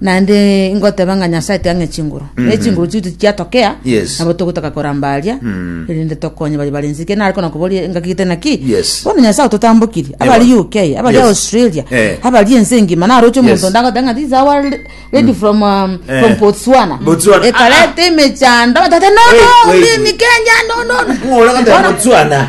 Naende ngoteba ng'a Nyasae tiang'e chinguru, ne chinguru chitu tichiatokea, Yes. nabo togotaka koramba aria, erinde tokonye baria bare inse. Ekio nare kona koboria engaki gete naki, Yes. bono Nyasae ototambokirie, abari Ewa. UK, abari Yes. Australia, Eh. abari ense engima, naroche Yes. omonto onde agoteba ng'a this is our lady from, um, Eh. from Botswana. Botswana. Ekareta emechando, tata, no, Wait, no, wait, mimi wait. Kenya, no, no, no. Ng'ora goteba Bono- Botswana.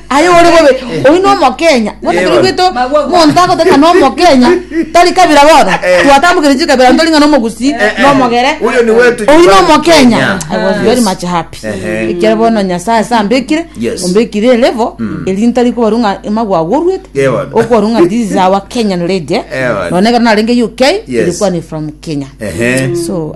Aye ore bobe, oyio na omokenya, bono ekero oigwete omonto agoteba ng'a na omokenya, tari kabira bono, twatambokeire chikabira ntori ng'a na omogusii, na omogere, Oyo niwe otunywa oyio na bari omokenya. Kenya. I was Yes. very much happy. Ehe. Ekero bono Nyasae ase ambekire, Yes. ombekire elevel, erio ntari kobarwa ng'a amagwe agorwete, Yeah, bono. okobarwa ng'a this is our Kenyan lady, eh. Yeah, bono. Noone ekero narenge UK, Yes. ere kwane from Kenya. Ehe. So,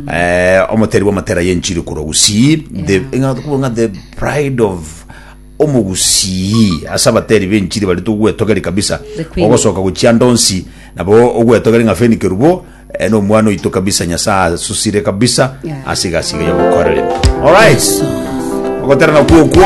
Eh, omoteri bw'amatera y'enchiri korwa Gusii, the, Yeah. ng'a tokoba ng'a the pride of omogusii ase abateri b'enchiri bari togwetogeri kabisa The queen. ogosoka gochia ndonsi nabo ogwetogeri ng'a feni kerubo eh, na omwana oito kabisa nyasaye asusire kabisa Yeah. ase egasi eye yogokorere alright ogotera nakwo okwo